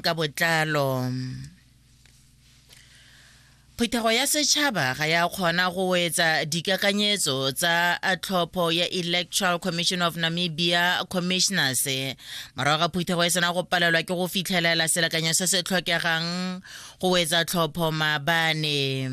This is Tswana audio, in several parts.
ka botlalo phetogo ya setšhaba ga ya kgona go etsa dikakanyetso tsa tlhopho ya electoral commission of namibia commissioners morago ga phetogo e sena go palelwa ke go fitlhelela selekanyo se se tlhokegang go etsa tlhopho maabane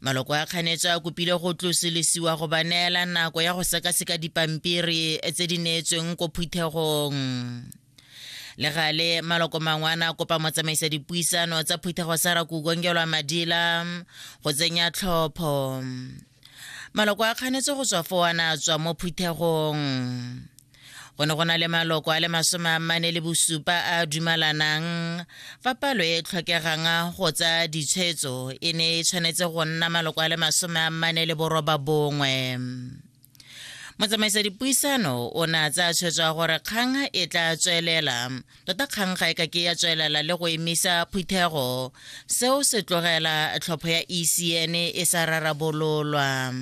maloko a kganetso a kopile go tlosolisiwa go ba neela nako ya go sekaseka dipampiri tse di neetsweng ko phuthegong le gale maloko mangwe a ne a kopa motsamaisa dipuisano tsa phuthego sa rakukongelwa madila go tsenya tlhopho maloko a kganetse go tswa fo a ne a tswa mo phuthegong go ne go na le maloko a le masome a mane le bosupa a dumalanang fa palo e tlhokegang go tsa ditshwetso e ne e tshwanetse go nna maloko a le masome a mane le boroba bongwe motsamaisa dipuisano o ne a tsaya tshwetso ya gore kgang e tla tswelela tota kgang ga e ka ke ya tswelela le go emisa phuthego seo se tlogela tlhopho ya ecn e sa rarabololwa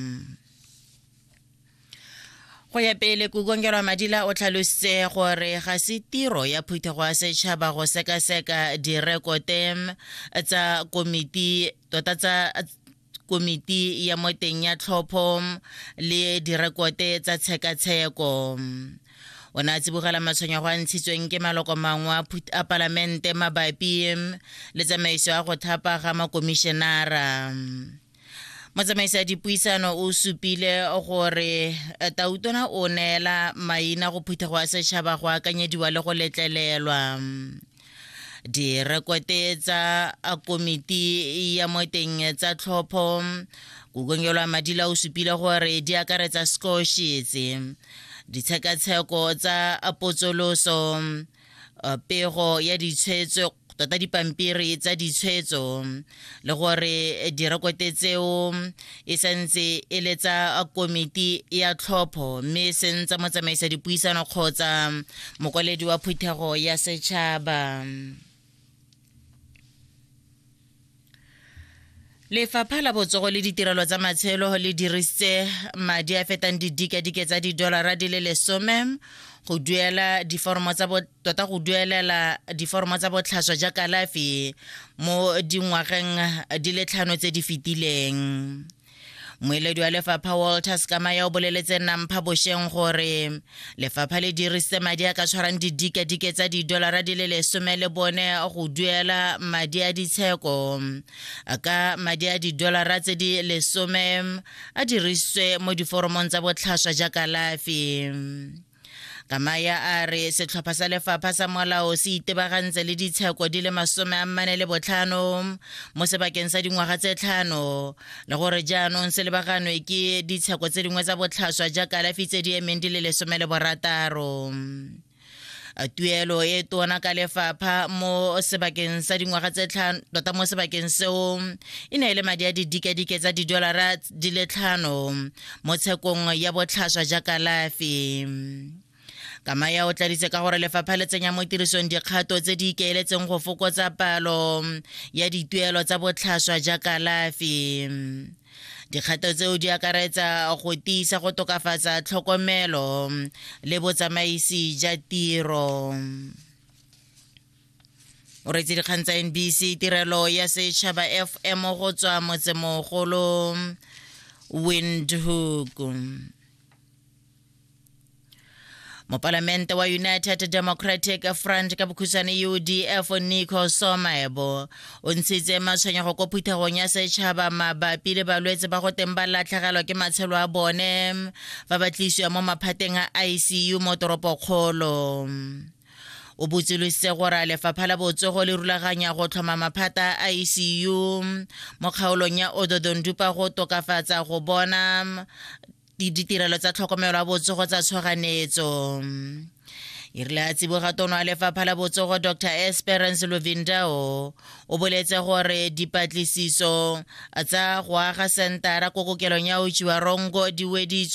go ya pele kukongelwa madila o tlhalositse gore ga se tiro ya phuthego ya setšhaba go sekaseka direkote tsa komiti tota tsa komiti ya moteng ya tlhopho le direkote tsa tshekatsheko o ne a tsibogela matshwenyego a ntshitsweng ke maloko mangwe a palamente mabapi le tsamaiso ya go thapa ga makomišenara motsamaisi ya dipuisano o supile gore eh, tautona o neela maina go phuthego ya setšhaba go akanyediwa le go letlelelwa direkote tsa komiti ya moteng tsa tlhopho kukongelwa madila o supile gore di akaretsa scoshetse ditshekatsheko tsa potsoloso uh, pego ya ditshwetso tota dipampiri tsa ditshwetso le gore direkote tseo e santse e le tsa komiti ya tlhopho mme e seng tsa motsamaisa dipuisano kgotsa mokwaledi wa phuthego ya setšhaba lefapha la botsogo le ditirelo tsa matshelo le dirisitse madi a fetang didikadike tsa didolara di le lesome go duela diforomo tsa tota go duelela diforomo tsa botlhaswa ja kalafi mo dingwageng di le tlhano tse di fetileng moeledi wa lefapha walter sekamaya o boleletse nampha bosheng gore lefapha le dirisitse madi a ka tshwarang didikadike tsa didolara di le lesome le bone go duela madi a ditsheko ka madi a didolara tse di lesome a dirisitswe mo diforomong tsa botlhaswa ja kalafi kamaya a re setlhopha sa lefapha sa molao se itebagantse le ditsheko di le masome a mmane le botlhano mo sebakeng sa dingwaga tse tlhano le gore jaanong se lebaganwe ke ditsheko tse dingwe tsa botlhaswa ja kalafi tse di emeng di le lesome le borataro tuelo e tona ka lefapha mo sebakeng sa dingwaga tse tlhano tota mo sebakeng seo e ne e le madi a didikadike tsa didolara di le tlhano mo tshekong ya botlhaswa ja kalafi kamaya o tladitse ka gore lefapha le tsenya mo tirisong dikgato tse di ikaeletseng go fokotsa palo ya dituelo tsa botlhaswa ja kalafi dikgato tseo di akaretsa go tiisa go tokafatsa tlhokomelo le botsamaisi ja tiro o retse dikgang tsa nbc tirelo ya setšhaba fm go tswa motsemogolo windhoek mopalamente wa united democratic front ka bokhutshwane udf nico somaebo o ntshitse matshwenyego ko phuthegong ya setšhaba mabapi le balwetse ba go teng ba latlhegelwa ke matshelo a bone fa ba tlisiwa mo maphateng a icu mo toropokgolo o botsolositse gore a lefapha la botsogo le rulaganya go tlhoma maphata a icu mo kgaolong ya ododondupa go tokafatsa go bona ditirelo tsa tlhokomelo ya botsogo tsa tshwaganetso e rile a tsiboga tono a lefapha la botsogo dr esperance lovindao o boletse gore dipatlisiso tsa go aga sentara ko kokelong ya otsiwa rongo di weditswe